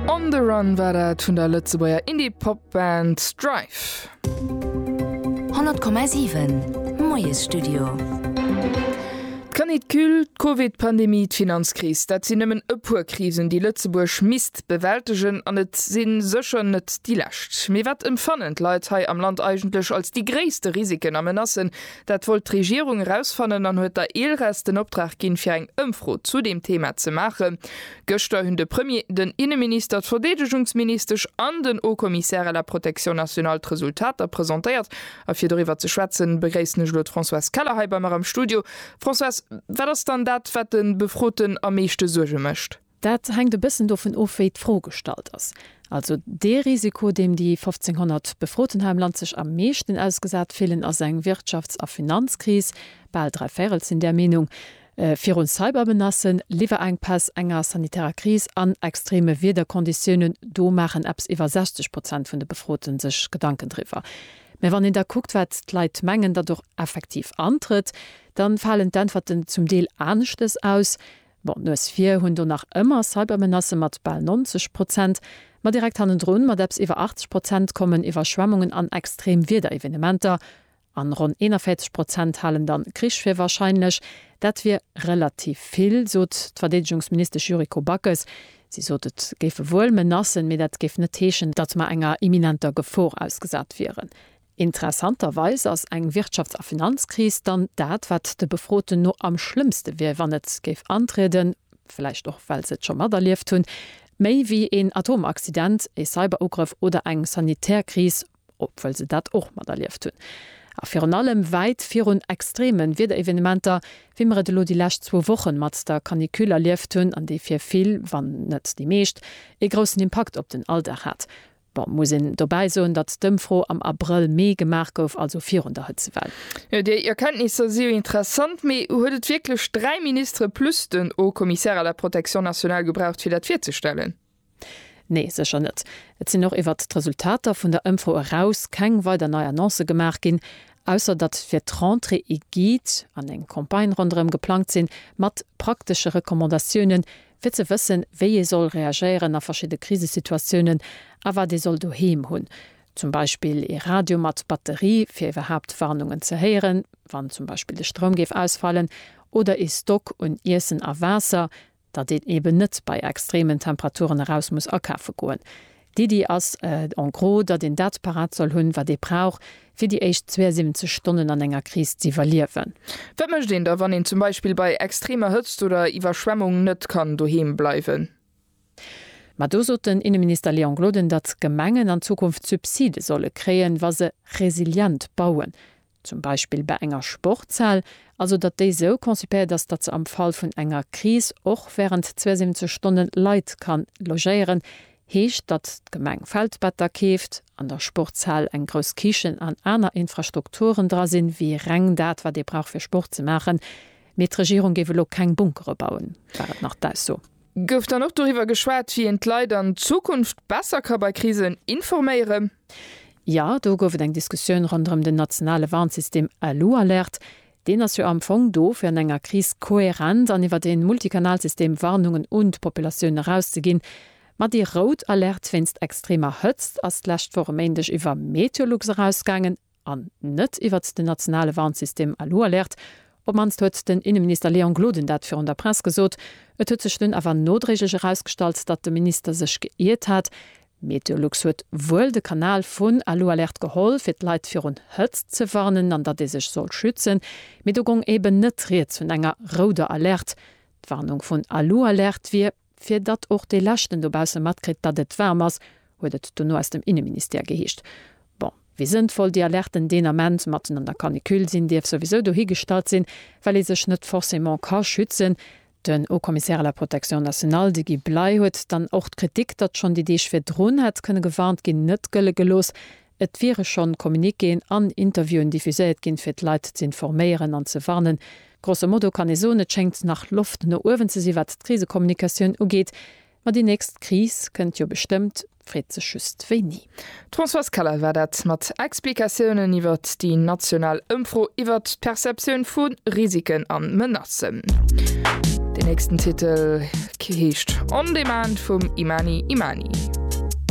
On the Run war dat vun der Lëtzebuerger Indie-Pop-Band Strife. 100,7 Moiesstudio. D'Canicule, d'Covid-Pandemie, d'Finanzkris, dat sinn nëmmen e puer Krisen, déi Lëtzebuerg misst bewältegen. An et si sécher net déi lescht. Mee wat emfannen d'Leit hei am Land eigentlech als déi gréisste Risiken a Menacen, Dat wollt d'Regierung erausfannen an huet der ELRES den Optrag ginn, fir eng Ëmfro zu deem Thema ze maachen. Gëschter hunn de Premier, den Inneminister, d'Verdeedegungsministesch an den Haut-Commissaire à la protection nationale d'Resultater presentéiert. A fir doriwwer ze schwätzen, begréissen ech elo d'Françoise Keller hei bei mer am Studio. Françoise, wat ass dann dat, wat de Befroten am meeschte Suerge mécht? Dat hänkt e bëssen dovun of, wéi d'Fro gestallt ass. Also dee Risiko, deem déi 1.500 Befroten hei am Land sech am meeschten ausgesat fillen, ass eng Wirtschafts a Finanzkris, bal dräi Véirel sinn där Meenung, virun Cybermenacen, Liwwerenkpäss, enger sanitärer Kris an extreme Wiederkonditiounen, do maachen eppes iwwer 60 Prozent vun de Befrote sech Gedanken driwwer. Mä wann een da kuckt, wat d'Leit mengen, datt och effektiv antrëtt, da falen d'Äntwerten zum Deel aneschtes aus. Bon, d'Nues vir hunn do nach ëmmer Cybermenacë mat bal 90 Prozent, ma direkt hannendrun mat eppes iwwer 80 Prozent kommen Iwwerschwemmungen an extrem Wiederevenementer, an ronn 41 Prozent halen dann Krich fir warscheinlech. Dat wier relativ vill, sot d'Verdeedegungsministesch Yuriko Backes. Si sot, et géife wuel Menacen, mee dat géif net heeschen, datt mer enger imminenter Gefor ausgesat wieren. Interessanterweis ass eng Wirtschafts a Finanzkris dann dat, wat de Befroten no am schlëmmste wier, wann et géif antrieden, vläicht och well se et scho materlieft hunn, méi wéi een Atomaccident, ee Cyberugrëff oder eng sanitär Kris, obwuel se dat och materlieft hunn. A virun allem wäit virun extreme Wiederevenementer, wéi mer et elo déi lescht zwou Wochen mat der Canicule erlieft hunn an déi fir vill, wann net déi meescht, ee groussen Impakt op den Alldag hat. Bon, muss een dobäi soen, datt d'Ëmfro am Abrëll-Mee gemaach gouf, also virun der Hëtzewell. Jo, déi Erkenntnisser si jo interessant, mee huet et wierklech dräi Ministere plus den Haut-Commissaire à la protection nationale gebraucht, fir dat virzestellen? Nee, sécher net. Et sinn och iwwert d'Resultater vun der Ëmfro eraus keng weider nei Annoncë gemaach ginn, ausser datt fir d'Rentrée ee Guide an eng Campagne ronderëm geplangt sinn, mat praktesche Recommandatiounen, fir ze wëssen, wéi ee soll reagéieren a verschidde Krisesituatiounen a wat ee soll doheem hunn, zum Beispill ee Radio mat Batterie, fir iwwerhaapt Warnungen ze héieren, wann zum Beispill de Stroum géif ausfalen, oder ee Stock un Iessen a Waasser, dat een eeben net bei extremen Temperaturen eraus muss akafe goen. D'Iddi ass en gros, datt een dat parat soll hunn, wat ee brauch, fir déi éischt 72 Stonnen an enger Kris z'iwwerliewen. Wat mécht een da, wann een zum Beispill bei extremer Hëtzt oder Iwwerschwemmung net kann doheem bleiwen? Ma do sot den Inneminister Léon Gloden, datt d'Gemengen an Zukunft Subside solle kréien, wa se resilient bauen. zum Beispill bei enger Sportshal, also datt déi sou concipéiert ass, datt se am Fall vun enger Kris och während 72 Stonne Leit kann logéieren, heescht, datt d'Gemeng Feldbetter keeft, an der Sportshal eng grouss Kichen an aner Infrastrukturen dra sinn, wéi reng dat, wat ee brauch fir Sport ze maachen, mee d'Regierung géif elo keng Bunkere bauen, war et nach d'Ausso. Gouf dann och doriwwer geschwat, wéi een d'Leit an Zukunft besser ka bei Krisen informéieren? Jo, do gouf et eng Diskussioun ronderëm den nationale Warnsystem Alualert. Deen ass jo am Fong do, fir an enger Kris kohärent an iwwer ee Multikanalsystem Warnungen un d'Populatioun erauszeginn. Ma déi rout Alerte wéinst extremer Hëtzt ass d'lescht Woch e Méindeg iwwer Meteolux erausgaangen. an net iwwert den nationale Warnsystem Alualerte, op d'mannst huet den Inneminister Léon Gloden dat virun der Press gesot. Et huet sech dunn awer nodréiglech erausgestallt, datt de Minister sech geiert hat. Meteolux huet wuel de Kanal vun Alualerte geholl, fir d'Leit virun Hëtzt ze warnen an datt ee sech soll schützen, mee do gong eben net rieds vun enger rouder Alerte. D'Warnung vun Alualerte wier. Fir datt och dee Leschten dobausse matkritt, datt et waarm ass, huet et dono aus dem Inneministère geheescht. Bon, wéi sënnvoll déi Alerten deen Ament, matten an der Canicule, sinn, dierf souwisou dohigestallt sinn, well ee sech net forcément ka schützen. Den Haut-Commissaire à la Protection nationale, de Guy Bley, huet dann och d'Kritik, datt schonn déi Deeg virdrun hätt kënne gewarnt ginn, net gëlle gelooss, Et wiere schonn Communiquéen an Interviewen diffuséiert ginn, fir d'Leit ze informéieren an ze warnen. Grosso modo kann ee soen, et schéngt nach Loft no uewen ze sinn, wat d'Krisekommunikatioun ugeet. Ma déi nächst Kris kënnt jo bestëmmt, d'Freet sech just wéini. D'Françoise Keller war dat mat Explikatiounen iwwert déi national Ëmfro iwwert d'Perceptioun vu Risiken a Menacen. Den nächsten Titel heescht On Demand vum Imani Imani.